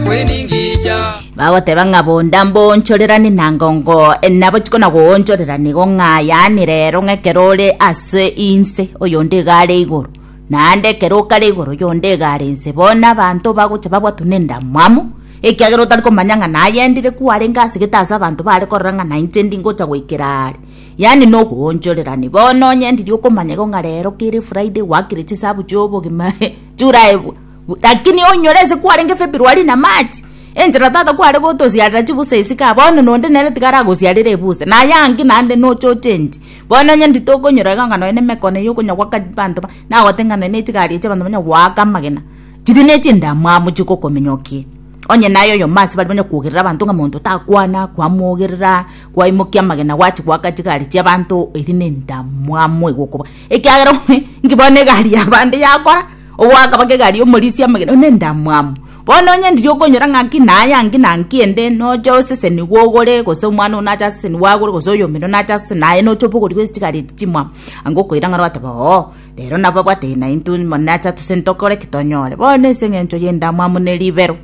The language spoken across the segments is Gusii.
kweningija bagoteba ng'a bonda mboonchorerani na ngongo nabo chikona goonchorera nigo ng'a yaani rero ng'a ekero ore ase inse oyonde iga are igoro naende ekero okare igoro oyonde iga are inse bono abanto bagocha babwatwa nendamwamu ekiagera otari komanya ng'a nayendire kwarenge asegete ase abanto bare korora ng'a nainche ndingocha goikera are yaani na ogoonchorerani bono onye ndiri okomanya igo ng'a rero kere friday gwakire chisabu chi'obogima churaaebwa Lakini onyore ase kwarenge Februari na March, enchera tata kware gotosiarera chibusa isiko aa, bono nonde nere tiga aragosiarere ebusa, na aye ang'e naende nochochenchi. Bono onye nditokonyora iga ng'a nonya nemeko na ey'okonya gwa abanto ba, nagote ng'a nonya nechigari echi abanto banya goaka amagena, chiria nechindamwamu chigokomenya o kie. Onye naye oyomo ase baria banya kogerera abanto ng'a monto takwana, kwamogerera, kwaimokia amagena gwachi goaka chigari chi'abanto, eria nendamwamu egokoba, ekiagera onye inki bono egari y'abande yakora. Obo akaba kegari y'omorisia omogeni one endamwamu. Bono onye ndiri okonyora ng'aki naye ang'e na ng'aki ende, nocha oseseni gwogore, gose omwana one nache aseseni gwagore, gose oyomino nache aseseni naye nocha obogori bwe chigari eti chimwamu. Ang'e okoira ng'a rwateba oo, rero nabo abwateirie naintwe mono nache atuse ntokore ki tonyore. Bono ase eng'encho y'endamwamu ne ribero,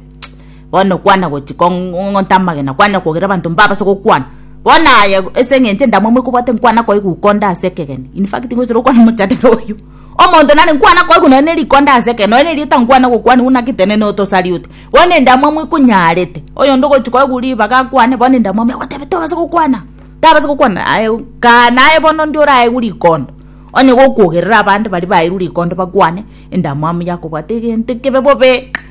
bono kwana gochi kong'onta amagena kwanya kogera abanto mbabase gokwana. Bono aye ase eng'encho endamwamu ekobwate nkwana koigwa uko onde ase ekegeni. In fact, ngochire gokwana mochadebe oyio. Omonto nare nkwana koigwa nonya ne rikonda ase ekero, nonya erio tankwana gokwanigwa naki tenene otosarioti. Bono endamwamu ekonyarete, oyonde ogochia koigwa ribaga akwane, bono endamwamu egotebia tobasa gokwana, tabasa gokwana aye kaa naye bono ndio oraegwe rikondo, onye gokwogerera abande baria baeirwe rikondo bakwane, endamwamu yakobwate egento ekebe bobe.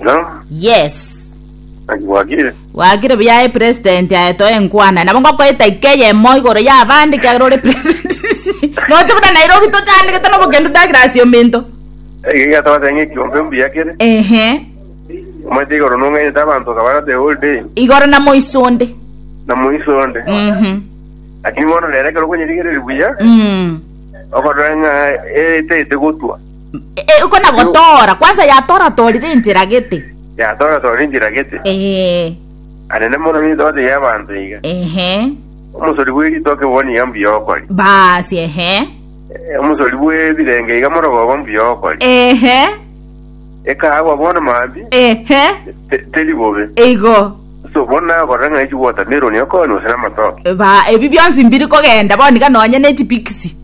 No, yes naki bwagire. wagire buya aye president aetoe enkwana nabo ngokoeta ike eyemo igoro ya abande kiagera ore president noche buna nairobi tochandegete nobokendu dagira ase ominto Ege gatwate ng'ekiombe mbuya kere. ehe Omanyete igoro nong'enyete abanto kabara the whole day. igoro na moisonde Na moiso onde. Mhm. Lakini bono rero ekero okonyerigereria buya, Mm. okorora ng'a etaete gotwa. Iko nagotora, kwanza yatoratorire enchera gete. Yatoratorire enchera gete. Ee. Anene mono nindoto y'abanto iga. Ehe. Omosori bw'eritoke bono iga mbuya okori. Basi ehe. Omosori bw'ebirenge iga morogoba mbuya okori. Ehe. Ekaagwa bono maambi. Ehe. Teri bobe. Igo. So bono nakorera ng'a echi watermelon okonywa gose namatoke. Ba, ebi bionsi mbiri kogenda bono iga nonye ne chipikisi.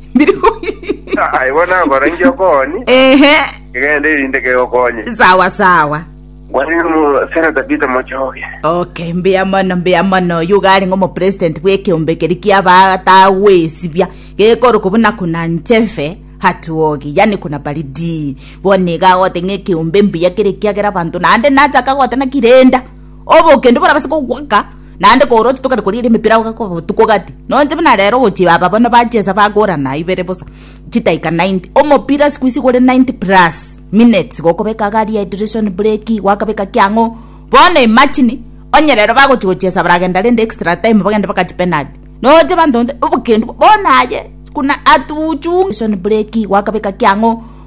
Aye bono nakora inki okonyi? Ehe, Egende erinde kegokonye. sawa sawa. Bwani omo Seneta Peter Mochoge. Okay, mbuya mono mbuya mono oyo gari ng'omo president bw'ekeombe keri kiabatagwesibia gekorokwa buna kuna ncheve hatuogi yani kuna baridi bono iga agote ng'a ekeombe mbuya kere ekiagera abanto naende nacha akagotena kirenda obokendu borabase kogoaka naende kooroche tokare korigia emepira gogakoba botuko gati nonya buna rero gochia aba bono bachesa bagorana ibere bosa chidakika ninety omopira siku hizi gore ninety plus minutes gokobeka iga rehydration breki gwakabeka ki ang'o bono imagine onye rero bagochia gochesa baragenda rende extra time bagende mpaka chipenalty nonya abanto bonde obokendu bono aye kuna atuchunge breki gwakabeka ki ang'o.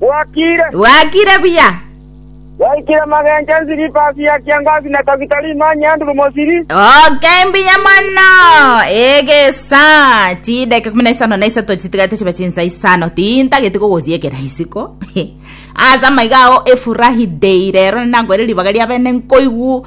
Bwakire. Bwakire buya. Yaikire magencho ensiripasi ya kiangazi na tagitari imanye Andrew Mosiri. Oke mbuya mono egesa chideke kumi na isano na isato chitigate chibe chinsa isano tintageti kogosiekera isiko ase amaiga ao efurahi dei rero ninankoire ribaga ria bene nkoigu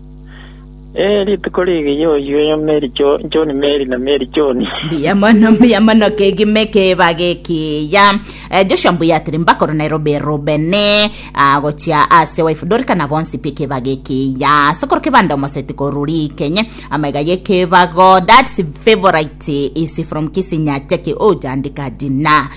Ee, rituko ri'ige y'oyio John Mary na Mary John. Mbuya mono mbuya mono kegime keba gekiya eh, Joshua mbuya atiri mbakoro Nairobi Rubeni agochia ase wife Dorika na bonsi pi keba gekiya sokoro kebanda omoseti koruri kenye amaiga yekebago dad's favorite is from Kisinya Jackie ojandika dina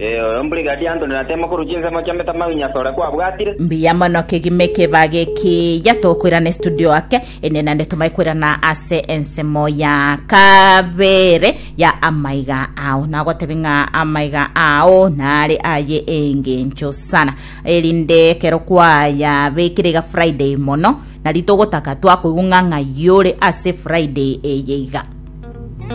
Ee, oyo mbrigadier Anthony Ratemo korwa chinsemo chi'emetamayo inye asore kwabwatire. Mbuya mono kegima ekebaa gekiya tokoirana estudio ake ende nande tomae koirana ase ensemo ya kabere ya amaiga ao nagotebe ng'a amaiga ao nare aye engencho sana erinde ekero kwayabekire iga friday mono nari togotaka twakoigwa ng'a ng'ai ore ase friday eye iga